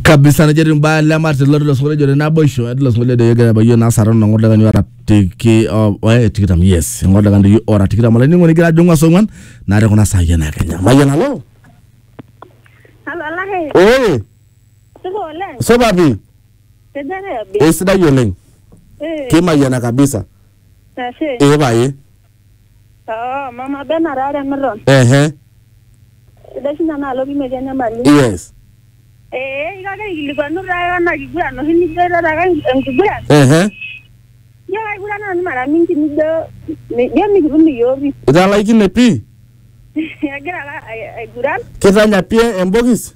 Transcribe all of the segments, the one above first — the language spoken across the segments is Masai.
kabisa nejo etii mbaa le Martin loti losokoni ejo te naboisho etii losokoni ejo egira abayie naa sarana ong'or lekani ora tiki o- oe tikitam yes ong'or lekani yu ora tikitam olainining'oni igira ajong'u asong'uan naa te kuna saai ena kenya mayian alo Halo Alake, ee supa oleng. supa pi Tejere abi. esidai oleng Eh, kimayiana kabisa ashe. ee paye Oo, mama Bena taa Remiton. Ehe. Sidai sinye enaalo pii metii enyamali. Yes. Ee, iko ake aikilikwanu taa ena kiguran oshi nijo airara ake enkiguran. Ehe. Ijo kaigurana nanu mara mingi nijo ijo mikitum iyiook pii. Italaikine pii? Agira ake aiguran. Kitanya pii embokis?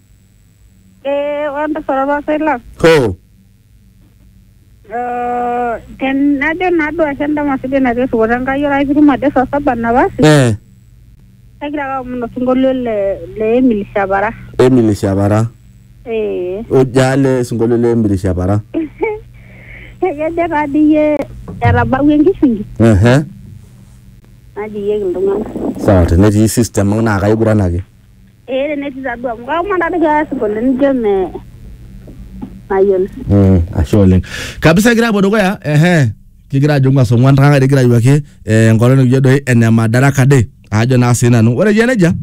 Ee ore entasat orpasai lang Hoo. eh, tenajo naaduo ashe endama sidai natii erripoto Enkai ore ake pitum ajo saa saba napasi Eh. kagira ake aomon osinkolio le le Emily Shapara Emily Shapara. ee Ojale osinkolio le Emily Shapara. ekejo taa dii iyie etabawua enkishingi Ehe. najoyieki iltung'anak Sawa tenetii system ang naa kaiguranaki. ee tenetii tadua amu kaomon tadoi peasip oleng nijo me mayiolo Mm, ashe oleng kabisa kigira apuo dukuya ehe kigira ajo ng'as ong'uan tang'are kigira ayuaki eh, enkolong nikijo doi ene madaraka day ajo naa sii nanu ore ijo nejia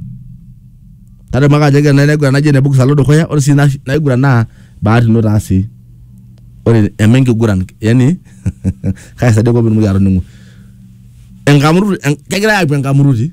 tadamu ake ajo kena naiguran naji ene bukis alo dukuya ore sii na- naiguran naa bahati ino taa sii ore eme enkiguran yani kaisaidia kop pitumoki atoning'u enkamuruti en- kegirae apuo enkamuruti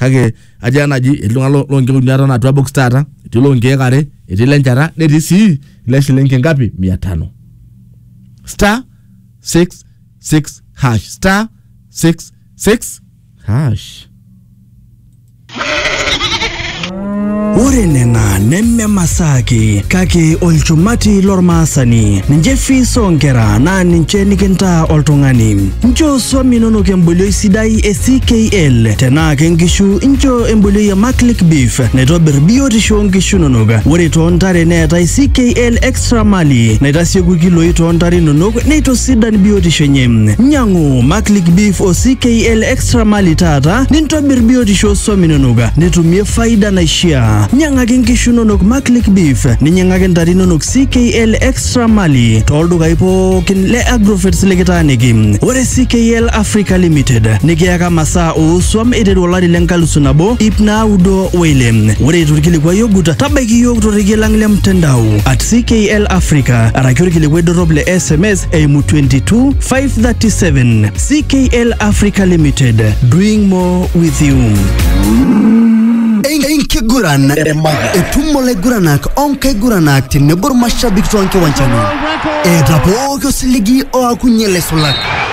kake atii enaji etii iltung'anak lo- lonkeek uni aton atua box taata etii lonkeek are etii lenchata netii sii ile shilingi ngapi mia tano star 66 hash star 66 hash Ore nena neme masaa ake kake olchumati lormaasani. Ninche fees oonkera naa ninche nikintaa oltung'ani. Nchoo swam inonok embolioi sidai e CKL. Tenaa ke nkishu nchoo embolioi e Maclick Beef naitobir biotisho oo nkishu inonok. Ore too ntare neetae CKL Extra Sramali naitasieku ilkiloi too ntare inonok neitosidan biotisho enye. Nyang'u Maclick Beef o CKL Extra Mali taata nintobir biotisho oo swam inonok nitumie faida naishiaa. Nyang'aki nkishu inonok Maclick Beef ninyang'aki ntare inonok CKL Extra Mali too ldukai pookin le Agrovets likitaaniki. Ore CKL Africa Limited nikiyaka masaa oo swam eiteru olari le nkalisu nabo ip naudo Wile, ore eitu ilkilikuai ogut, tabaiki iyiook torrekie lang le mtandao at CKL Africa araki olkilikuai dorrop le SMS eimu 22 537. CKL Africa Limited, doing more with you. enkiguran etumo laiguranak onkaiguranak tenebo irmashabik toonkiwanjani eeta pooki osiligi oakunye laisulak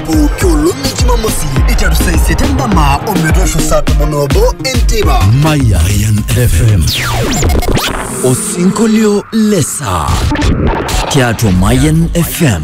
pooki olong e jumamosi iteru saa isiet endama ometoosho saa tomon obo enteipa Mayan FM. Osinkolio lesaa tiatua Mayan FM.